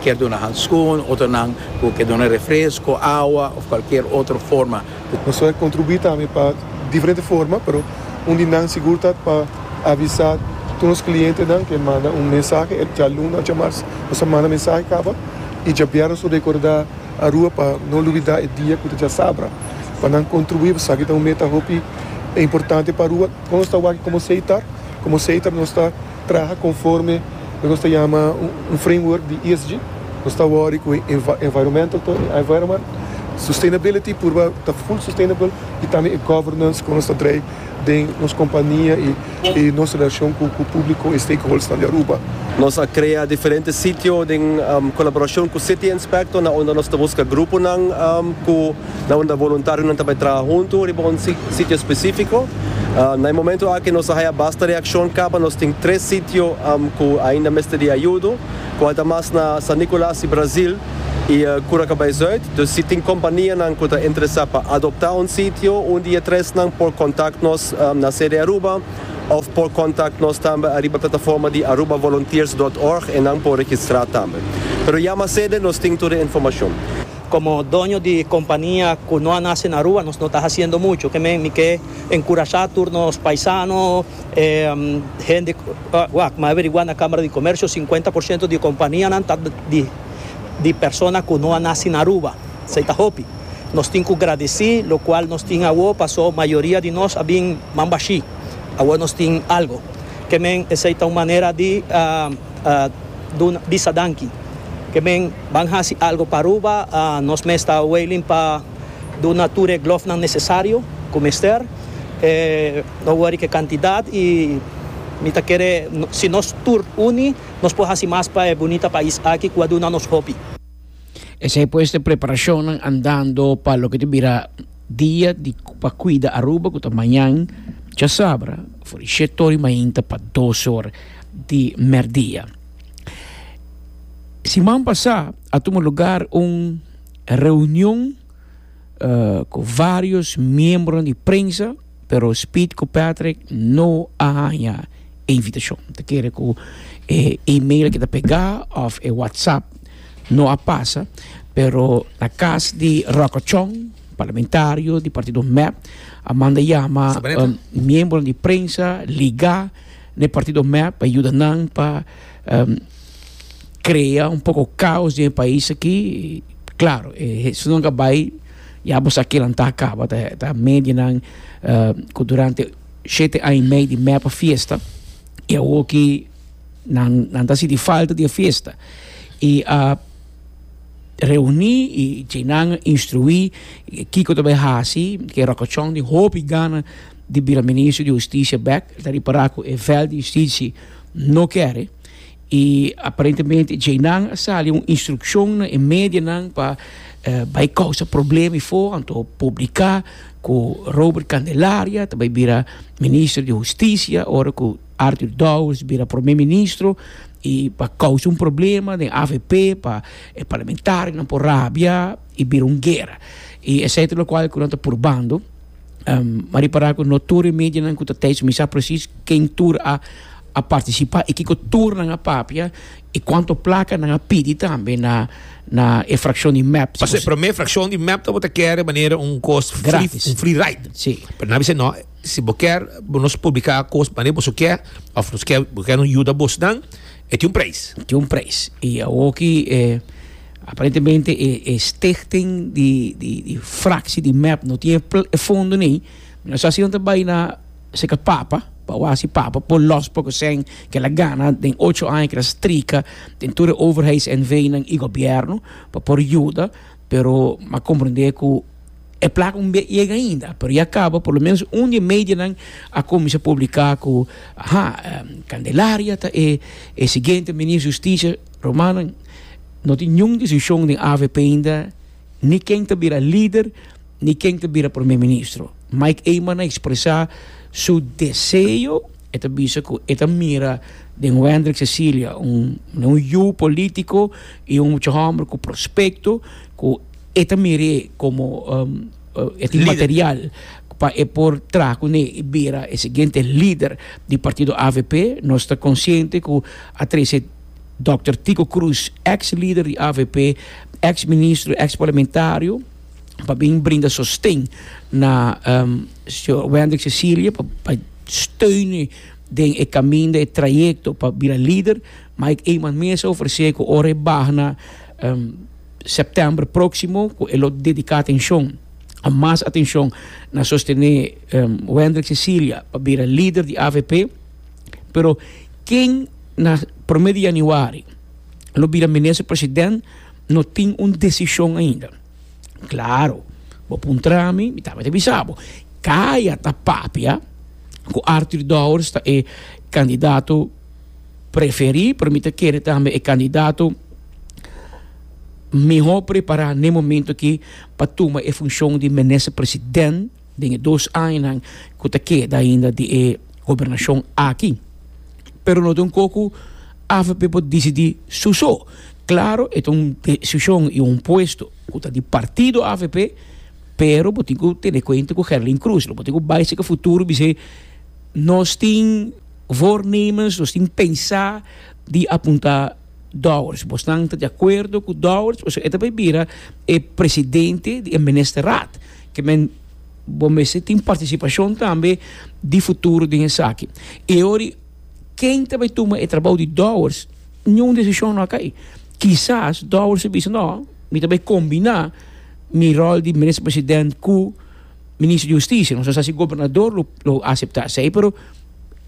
kier duna handschoen, otronan cu kier duna refresco, awa of cualkier otro forma. Nos a contribui tambe pa diferente forma, pero un di nan sigur ta pa avisa tur nos clientenan cu e manda un mensahe e djaluna o djamarsa nos a manda mensahe caba y djabierna nos a recorda. a rua pa no lubidá e dia ku ta dja sabra pa nan kontribuí esaki ta un meta hopi importante pa rua kon nos ta wak komo seitar komo seitar nos ta traha konforme lo nos ta yama un framework di esg nos ta wòri ku e environmental to e environment sustainability purba ta full sustainable i tambe e governance kon nos ta drai. den nos kompania i nos relashon ku públiko i stakeholdersnan di Aruba. Nos a krea diferente sitio den kolaborashon ku City Inspector na unda nos ta buska gruponan ku na unda voluntarionan ta bai traha huntu riba un sitio spesífiko. Na e momentu aki nos a haya basta reakshon kaba nos tin tres sitio ku ainda mester di ayudo, kual ta mas na San Nikolas i Brazil. i Cura Cabaizuid. Dus si tin kompanianan ku ta interesá pa adoptá un sitio un di e tresnan por kontakt nos na sede Aruba òf por kontakt nos tambe ariba plataforma di arubavolunteers dot org en nan por registrá tambe. Pero yama sede nos tin tur e informashon. Komo doño di kompania ku no a nase na Aruba nos no ta hasiendo mucho. Ke men mi ke enkurashá tur nos paisano, E hende wak ma averigua na Kamara di Komersio sinkuenta por siento di e kompanianan ta di persona ku no a nasi na Aruba. Esei ta hopi. Nos tin ku gradesí lokual nos tin awor pasó mayoria di nos a bin mambashí. Awor nos tin algu. Ke men esei ta un manera di duna bisa danki. Ke men ban hasi algu pa Aruba, nos mes ta wailing pa. Duna tur e glòfnan nesesario ku mester. No wòri ku e kantidat i mi ta kere si nos tur uni nos por hasi mas pa e bunita pais aki ku a duna nos hopi. Esei pues t'e preparashonnan andando pa loke ta bira Dia di pa Kuida Aruba ku ta mañan chasabra for di shèt ora i mainta pa dos ora di mèrdia. Siman pasá a tuma lugar un. E reunion ku vários miembronan di prensa, pero Speed ku Patrick no a haña e invitashon. Ta kere ku e email ke ta pegá òf e whatsapp no a pasa, pero na kas di Rokochon, parlamentario di partido mep, a manda yama miembronan di prensa ligá n'e partido mep pa yuda nan pa. crea un poco caos den e pais aki claro si nan ka bay ya bo sa kilan ta caba ta medianan cu durante shete aña y medio di mepa fiesta y awo aki nan ta sinti falta di e fiesta y a reuni y djey nan a instrui kico ta bay haci ke rokochon tin hopi gana di bira ministro di husticia bek el ta repara cu e vel di justicia no kere. I aparentemente djeinan a sali un instrukshon na e medianan pa bai kousa problema befo anto publiká ku Robert Candelaria ta bai bira minister di hustisia ora ku Artur Dowers bira prome ministro i pa kousa un problema den avp pa e parlamentarionan por rabia i bira un guera i esei ta lokual ku nan ta purbando. Um, ma ripará ku no tur e medianan ku ta tijs mi sa presis ken tur a a partisipá i kiko tur nan a papia i kuantu plaka nan a pidi tambe na na e frakshon di mep. Paso e promé frakshon di mep ta bo ta kere manera un kos free, Gratis. un free ride. Si. Pero nan a bisa no, si bo kèr bo nos publiká kos manera boso ke of nos kè bo kè nos yuda bosnan, E tin un prijs. Tin un prijs. I awor ki e aparentemente e e stichting di di di fraksi di mep no tin e fondo nei, mi a sa si nan ta bai na seka papa, pa awor hasi papa por los por kosèn kel a gana den ocho aña kel a strika den tur e overheidsnv nan i gobierno pa por yuda, pero m'akomprende ku E placa un bia yega ainda pero ya caba por lo menos un di e medianan a cuminsa publica cu ha candelaria ta e e siguiente minister di justicia romano no tin niun decision den avp ainda ni ken ta bira lider ni ken ta bira prome ministro mike eman a expresa su deseo e ta bisa cu e ta mira den wendrick cecilia un yu politico y un mucha homber cu prospecto cu E ta mer'é komo e tin material pa e por traha kuné i bira e siguiente lider di partido avp. Nos ta konsiente ku a trese dòkter Tiko Kroes, èks lider di avp, èks ministro, èks parlamentario, pa bin brinda sosten na señor Wendrick Cecilia pa pa steun'é den e kaminda, e trayekto pa bira lider. Mike Eman mesa ofresé ku ora e baha na. September próksimo ku e lo dediká atenshon, mas atenshon, na sostené Wendrick Cecilia pa bira lider di avp, pero ken na promé di yanüari lo bira minister president no tin un desishon ainda. Klaru, bo puntra mi, mi tabata bisa bo, kaya ta papia ku Arthur Dowers ta e kandidato? preferí, pero mi ta kere tambe e kandidato mihó prepará n'e momentu akí pa tuma e funshon di minister president den e dos añanan ku ta keda ainda di e gobernashon aki. Pero no ta un kos ku avp por disidí su so. Klaro e ta un desishon i un puesto ku ta di partido avp, pero bo tin ku tene kuenta ku Gerlin Cruz, lo bo tin ku bai si ka futuro bis'é nos tin. voornemens, nos tin pensa di apunta Dowers. Bosnan ta di acuerdo cu Dowers pasobra e ta bay bira e presidente di e Ministerraad. Ke men bo mester tin participacion tambe di futuro den esaki. Y e ori ken ta bay tuma e trabao di Dowers niun decision no a cay. Kisas Dowers a bisa no, mi ta bay combina mi rol di Minister President cu Minister di Husticia, nos ta sa si Gobernador lo lo acepta esei, pero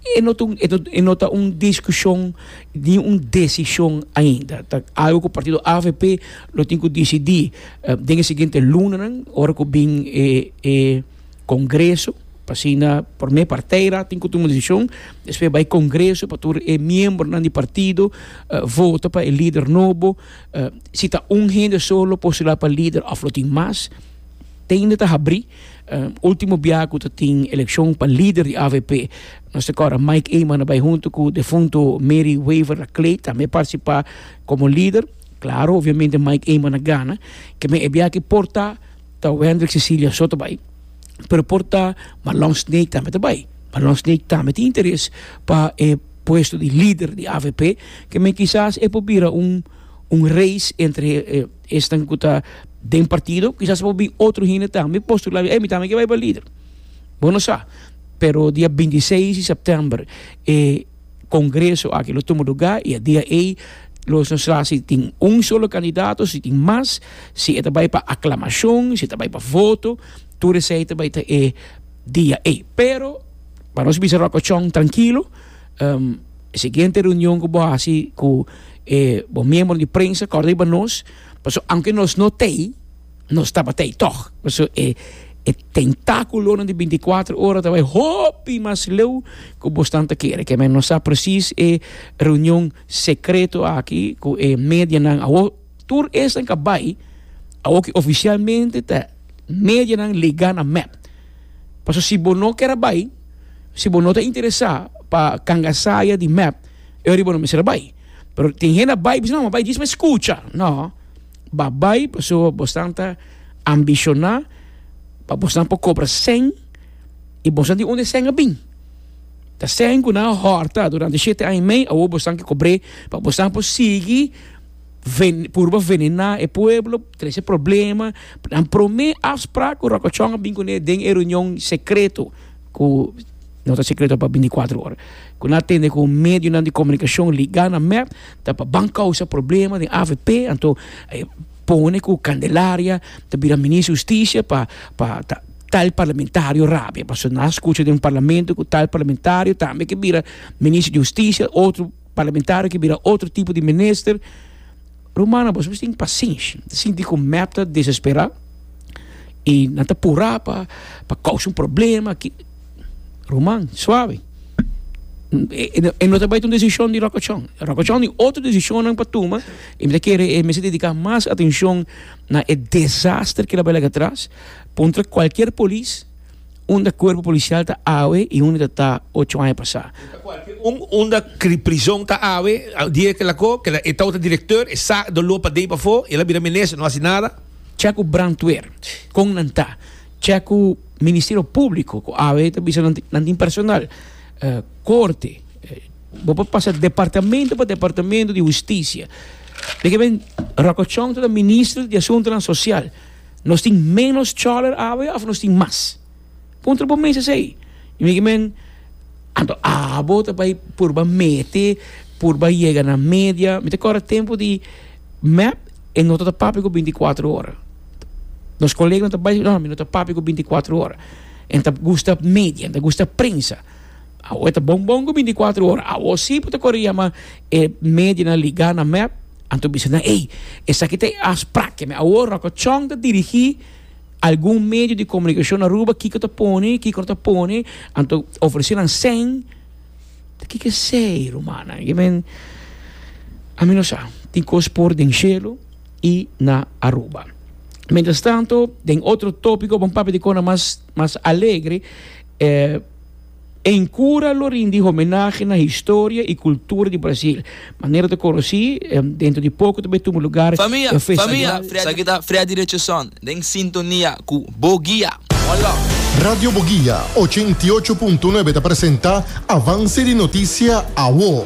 e no ta e no ta un discusion ni un decision ainda, ta algo cu partido avp lo tin cu dicidi den e siguiente lunanan ora cu bin e e Congreso, pa asina prome partij ra tin cu tuma decision, despues bai Congreso pa tur e miembronan di partido vota pa e lider nobo, si ta un hende solo lo postula pa lider of lo tin mas. Teinda ta habrí último biaha ku ta tin elekshon pa lider di avp. Nos ta kòrda Mike Eman a bai huntu ku defunto Mary Wever a Clay tambe partisipá komo lider. Klaro, obviamente Mike Eman a gana. Kemey e biaha aki por ta ta Wendrick Cecilia so ta bai. Pero por ta Marlon Snake tambe ta bai. Marlon Snake tambe tin interes pa e puesto di lider di avp. Kemey kisas e por bira un un race entre. Esnan ku ta den partido kisas por bin otro hende tambe postulá, ey mi tambe ke bai pa lider. Bo no sa, pero dia binti seis di sèptèmber e kongreso aki lo tuma lugá i e dia ei lo esnan sa si tin un solo kandidato, si tin mas, si e ta bai pa aklamashon, si e ta bai pa voto, tur esei ta bai ta e dia ei. Pero pa nos bisa ròkòchon trankilo. E siguiente reunion ku bo hasi ku e bo miembro di prensa, kòrda riba nos, pasobra aunke nos no ta ei, nos tabatei tòg. Paso e tentákulonan di bintikwatro ora ta bai hopi mas leu ku bo stan ta kere. Ke men no sa presis e reunion sekreto aki ku e medianan a wou Tur esnan ka bai awor ki ofisialmente ta medianan legá na mep. Paso si bo no ker a bai, si bo no ta interesá pa kanga saya di mep, e ora ei bo no mester a bai. Pero tin hende a bai, bisa, no, mi a bai djis mes kucha. No, bo a bai paso bosnan ta ambishoná pa bosnan por kobra sèn i bosnan di unda e sèn a bin. Ta sèn ku nan a hòrta durante shete aña i mei, awor bosnan ke kobr'é pa bosnan por sigui. ven, purba venená e pueblo, trese problema. Nan promé afsprak ku Rokochon a bin kuné den e reunion sekreto ku no ta sekreto pa bintikwatro ora. Ku nan a tende ku medionan di komunikashon ligá na mep ta pa ban kousa problema den avp. Anto e pone ku Candelaria ta bira minister di hustisia pa pa ta tal parlamentario rabia. Pasobra nan a skucha den un parlamento ku tal parlamentario tambe ke bira minister di hustisia otro. Parlamentario ki bira otro tipo di minister. Rumana bos mester tin pasenshi. Nan ta sinti ku mep ta desesperá i nan ta purá pa pa kousa un problema ki ruman suave e no ta bai ta un desishon di lokochon. Lokochon i otro desishonnan pa tuma i mi ta kere e mester dediká mas atenshon na e desaster ki ta bai lag'e atras puntra kualkier polis. unda cuerpo policial ta awe y unda ta ocho aña pasa. Un unda prison ta awe, die kila ko, kila e tawata directeur, e sa do lopa dei pafo, el a bira minister, no haci nada. Cha cu brandweer, con nan ta? Cha cu ministerio publico, cu awe ta bisa nan tin, nan tin personal? Corte, bo por pasa departamento pa departamento di husticia. Dik'e men Rocochon ta minister di asuntonan social. Nos tin ménos chòler awe òf nos tin mas? Puntra bo mes esei. I mi ke men, Anto abo ta bai purba mete, purba yega na media? Mi ta kòrda e tempu di mèp e no tabata papia ku binti i kuatro ora. Nos koleganan ta bai, no, mi no ta papia ku binti i kuatro ora. Nan ta gusta media, nan ta gusta prensa. Awo e ta bon bon ku binti kuatru ora. Awo si bo ta kore yama e media na ligá na mèp, anto bisa nan, Ey, esaki ta e afsprak. Keme awo Ròkòchòn ta dirigí algun medio di komunikashon na Aruba kiko ta pone, kiko no ta pone, anto ofresé nan sèn. Ta kiko esei, rumannan? Yo men, ami no sa. Tin kos por den shelu i na Aruba. Mientrastanto, den otro tópiko, bo a papia di kona mas, mas alegre. En cura lo rindi homenahe na historia y cultura di Brasil. Manera ta conoci, dentro di poco ta bay tuma lugar e festival. Esaki ta Freddy Richardson den sintonia cu Bo Guia. Hola! Radio Bo Guia ochenta i ocho punto nuebe ta presenta Avance di Noticia Awo.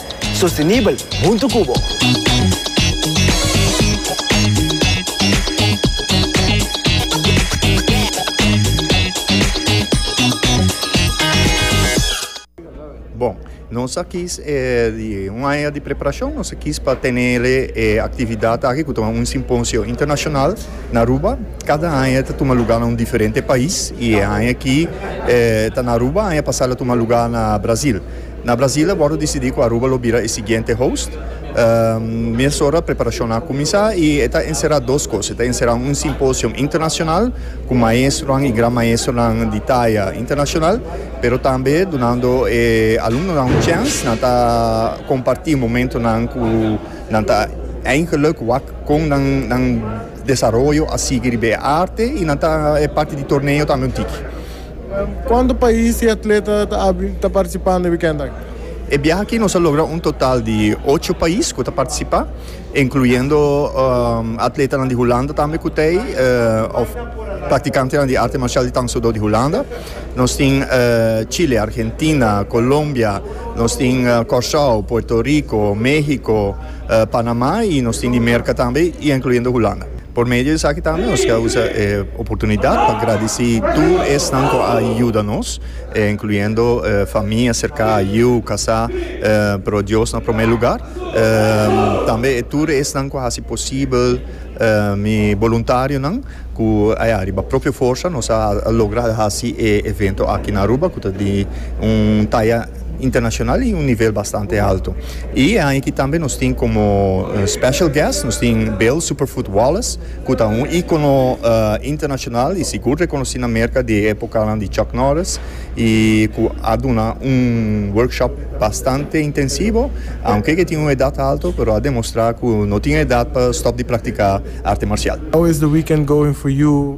Sostenibel huntu cu bo. Nos a kis di un aña di preparacion. Nos a kis pa tene e actividad aki cu ta un simposio internacional na Aruba. Cada aña ta tuma lugar na un diferente pais y e aña aki ta na Aruba y aña pasa a tuma lugar na Brazil. Na Brasil a wòrdu disidí ku Aruba lo bira e siguiente host. Mesora preparashonnan a kuminsá i e ta enserá dos kos. E ta enserá un simposio internashonal ku maestronan i gran maestronan di taya internashonal, pero tambe dunando e alumnonan un chèns nan ta kompartí momentonan ku nan ta eindgèluk wak kon nan desaroyo a sigui riba e arte i nan ta e parti di torneo tambe un tiki. Cuanto pais y atleta ta participa na weekend aki? E biaha aki nos a logra un total di ocho pais cu ta participa, incluyendo atletanan di Hulanda tambe cu ta ey, of practicantenan di arte marcial di Tang Soo Do di Hulanda. Nos tin Chile, Argentina, Colombia, nos tin Corsoao, Puerto Rico, Mexico, Panamá y nos tin Dimerca tambe y incluyendo Hulanda. Por medio di esaki tambe nos ta usa e oportunidad pa gradici tur esnan cu a yuda nos, incluyendo famia cerca, yu, casá, pero Dios na prome lugar, tambe e tur esnan cu a haci posibel, mi boluntarionan cu a riba propio forsa nos a logra haci e evento aki na Aruba cu ta di un taya. internacional y un nivel bastante alto y e aña aki tambe nos tin como special guest nos tin Bill Superfoot Wallace cu ta un icono internacional y sigur reconoci na Merca di e epocanan di Chuck Norris y cu a duna un workshop bastante intensivo aunke ke tin un edad alto pero a demostra cu no tin edad pa stop di practica arte marcial. How is the weekend going for you?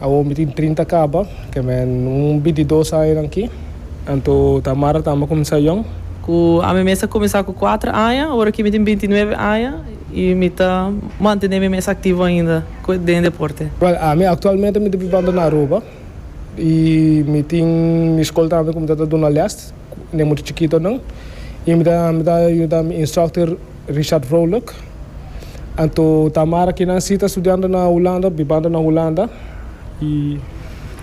Awor mi tin trinta kaba, ke men un bintidos aña na aki. Anto ta Mara tambe kuminsá yòn? Ku ami mes a kuminsá ku kuater aña, ora ki mi tin bintinuebe aña, i mi ta mantené mi mes aktivo ainda den e deporte. Wèl, ami aktualmente mi ta bibando na Aruba i mi tin mi skol tambe ku mi ta ta duna lès den mucha chikitonan i mi ta mi ta yuda mi instructor. Richard Vrolijk. Anto Tamara kinan si ta studiando na Hulanda, bibando na Hulanda y.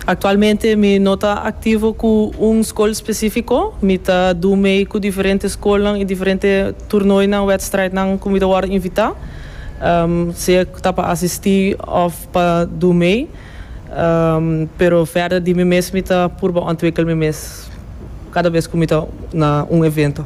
Actualmente mi no ta activo cu un school specifico, mi ta doe mee cu diferente schoolnan y diferente toernooinan, wedstrijdnan cu mi ta worde invita, sea ta pa asisti of pa doe mee, pero verder di mi mes mi ta purba ontwikkel mi mes cada vez cu mi ta na un evento.